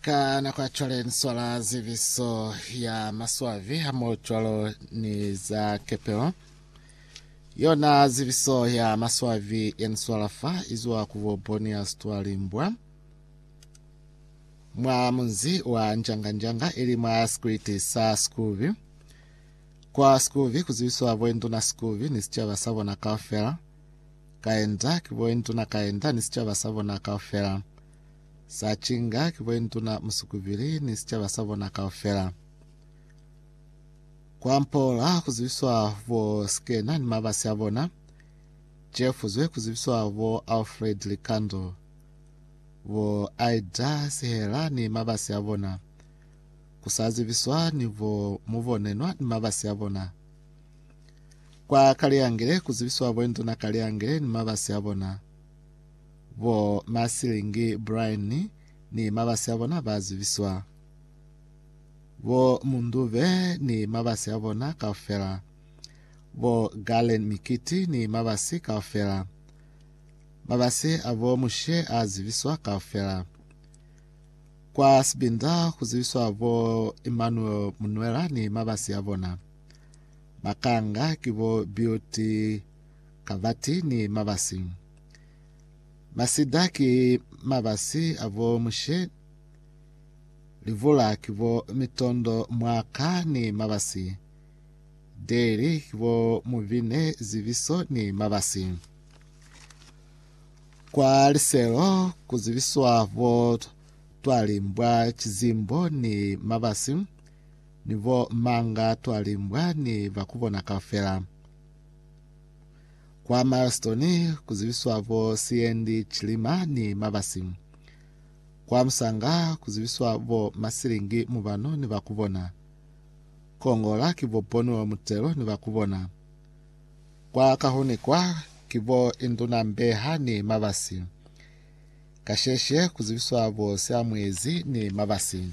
ka nako ya cwale ni swala zibiso ya maswabi hamo cwalo ni za kepelo yona zibiso ya maswabi ya ni swala fa izwa ku bo bonia stwalimbwa mwa munzi wa njanganjanga ili mwa sikwiti sa sikubi kwa sikubi kuzibiswa boinduna sikubi ni sicaba sa bona kaufela kaenda ki boinduna kaenda ni sicaba sa bona kaufela, sa cinga ki boinduna musukubili ni sicaba sa bona kaufela. Kwa mpola kuzibiswa bo Skena ni mabasi a bona, cefuzwe kuzibiswa bo Alfred Likando, bo Aida Sihela ni mabasi a bona, kusazibiswa ni bo Mubonenwa ni mabasi a bona. Kwa Kaleangele ku zibiswa Boinduna Kaleangele ni mabasi a bona, bo Masilingi Brian ni mabasi a bona ba zibiswa. Bo Mundube ni mabasi a bona kaufela. Bo Galen Mikiti ni mabasi kaufela. Mabasi a bo Mushe a zibiswa kaufela. Kwa Sibinda ku zibiswa bo Emmanuel Munwela ni mabasi a bona. Bakanga ki bo Beauty Kavati ni Mabasi. Masida ki mabasi a bo Mushe, Livula ki bo Mitondo Mwaka ni Mabasi, Deli ki bo Mubine Zibiso ni Mabasi. Kwa liselo ku zibiswa bo Twalimbwa Chizimbo ni Mabasi. Ni bo manga twali mbwa ni ba kubona kaufela. Kwa Milestone ku zibiswa bo Siendi Chilima ni Mabasi. Kwa Musanga ku zibiswa bo Masilingi Mubano ni ba kubona. Kongola ki bo Bonuel Mutelo ni ba kubona. Kwa Kahunikwa ki bo Induna Mbeha ni Mabasi. Kasheshe ku zibiswa bo Siamuezi ni Mabasi.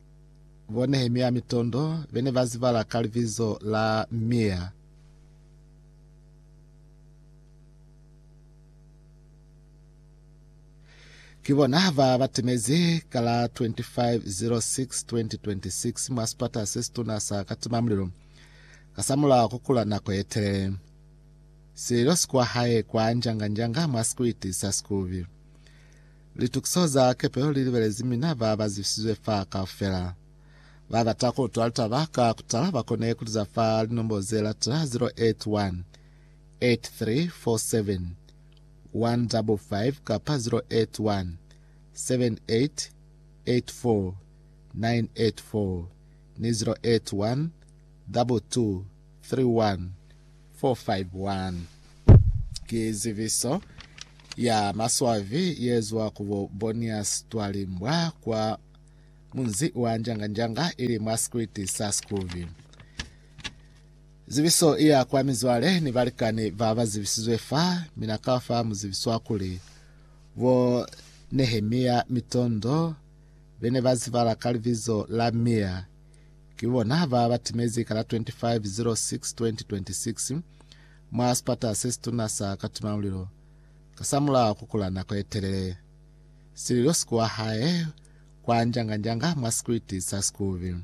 Bo Nehemia mitondo be ne ba zibala ka libizo la Mia. Ki bona ba ba timezi ka la 25.06.2026 mwa sipata se situna sa katimamulilo kasamulaho ku kula nako ye telele. Sililo si kwa hae kwa njanga-njanga mwa sikwiti sa Sikubi. Litukiso za kepelo li libelezi mina ba ba zibisizwe fa kaufela. Ba bata ku utwa litaba ka ku tala ba kone ku liza fa linombo ze latela 081-8347-155 kapa 081-7884-984 ni 081-222-999. 31451 Ki zibiso ya maswabi yezwa ku bo Bonias Twalimbwa kwa munzi wa Njanganjanga ili mwa sikwiti sa Sikubi. Zibiso iya kwa mizwale ni balikani ba ba zibisizwe fa, mi na ka fa muzibiswa kuli bo Nehemia Mitondo bene ba zibala ka libizo la Mia, Ki bona ba ba timezi ka la 25 06 2026 mwa sipata se situna sa Katimamulilo kasamulaho ku kula nako ye telele. Sililo si kuwa hae kwa njanga-njanga mwa sikwiti sa Sikubi.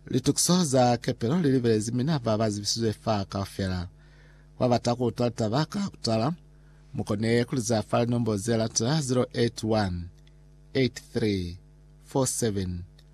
Litukiso za kepelo li libelezi mina ba ba zibisizwe fa kaufela. Ku ba bata ku utwa litaba ka kutala, mu kone ku li za fa linombo ze latela, 081 83 47